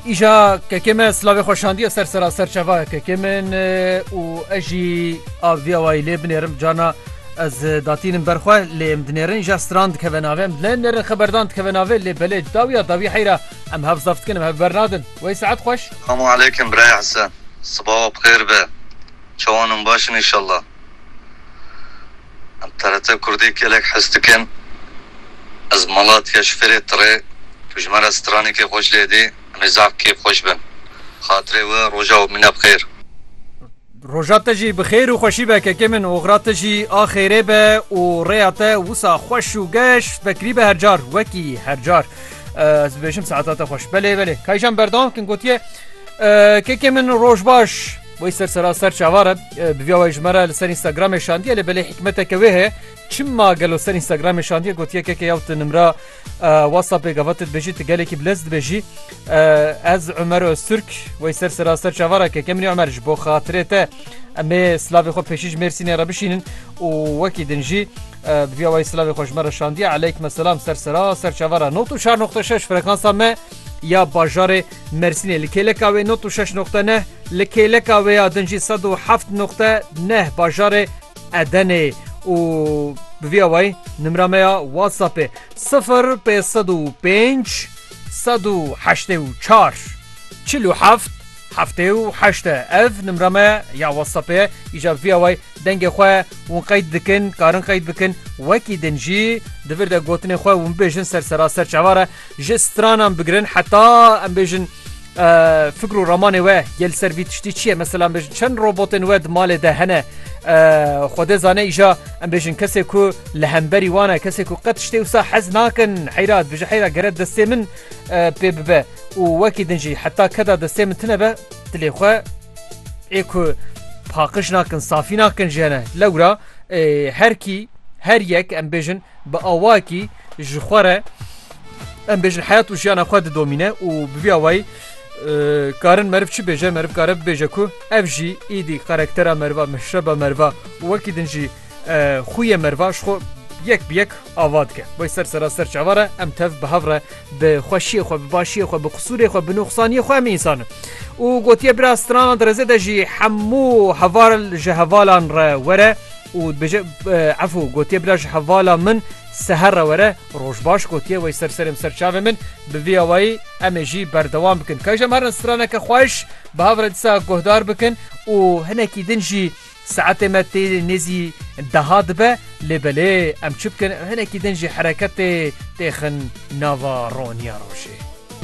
Îja kekê me silavê xwe şandiye ser sera serçeva kekê min û ez jî aviya wayî lê binêrim carna ez datînim berxwe lê em dinêrin îja stran dikeve navê em dilê nêrin xeberdan dikeve navê lê belê dawiya dawî heyra em hev zaf dikin em hev bernadin wey saet xweş Selamu aleykum biraya Hesen. Sibawa bixêr be. Çawan in baş in inşallah. Em TRT Kurdî gelek hez dikin. Ez Malatya ji Fêrê Tirê. Tu ji me re stranekê xweş lê dî. Em ê zaf kêfxweş bin. Xatirê we roja û mine bi xêr. Roja te jî bi xêr û xweşî be kekê min, oxira te jî a xêrê be û rêya te wisa xweş û geş vekirî be her car wekî her car ez dibêjim saeta te xweş. Belê belê Kayjan berdewam bikin gotiye, Kekê min roj baş. Wê ser seraser çavar e bi vîya wê ji me re li ser Instagramê şandiye lê belê hikmeteke wê heye çima gelo ser Instagramê şandiye gotiye keke yaw tu nimra WhatsAppê gava tu dibêjî tu gelekî bi lez dibêjî ez Umer Öztürk wê ser seraser çavara keke minî Umer ji bo xatirê te em ê silavê xwe pêşî ji Mêrsînê re bişînin û wekî din jî bi vîya wê silavê xwe ji me re şandiye eleyk me selam ser seraser çavara not û şar noxte şeş frekansa me Ya bajarê Mersînê li kêleka wê nod û şeş noqte neh, li kêleka wê ya din jî sed û heft noqte neh bajarê Edenê ye û bi vî awayî nimra me ya WhatsAppê sifir pênc sed û pênc sed û heştê û çar çil û heft heftê û heşt e ev nimra me ya WhatsAppê ye îcar bi vî awayî Dengê xwe hûn qeyd dikin, karin qeyd bikin, wekî din jî di vir de gotinên xwe hûn bêjin ser seraser çavar e, ji stranan bigirin heta em bêjin fikr û ramanê we yê li ser vî tiştî çi ye, mesela em bêjin çend robotên we di malê de hene, xwedê zane îja em bêjin kesê ku li hemberî wan e, kesê ku qet tiştê wisa hez nakin, heyra dibêje heyra gere destê min pê bibe û wekî din jî heta keda destê min tune be, dilê xwe. Ê ku paqiş nakin, safî nakin ji hene. Lewra her kî her yek em bêjin bi awakî ji xwe re em bêjin heyat û jiyana xwe didomîne û bi vî awayî karin meriv çi bêje meriv kare bibêje ku ev jî îdî karaktera meriva meşreba meriva wekî din jî Xûyê merva ji xwe yek bi yek ava dike. Wê ser sera ser çava re em tev bi hev re bi xweşiyê xwe bi başiyê xwe bi qisûrê xwe bi nuxsaniyê xwe em însan in. û gotiye bira stranan direzê de jî hemû heval ji hevalan re were û dibêje efû gotiye bira ji hevala min seher re were roj baş gotiye wê ser serê min ser çavê min bi vî awayî em ê jî berdewam bikin. Kajî em herin straneke xweş bi hev re disa guhdar bikin û hinekî din jî Saetê me tê nêzî deha dibe lê belê em çi bikin hinekî din jî hereketê têxin nava roniya rojê.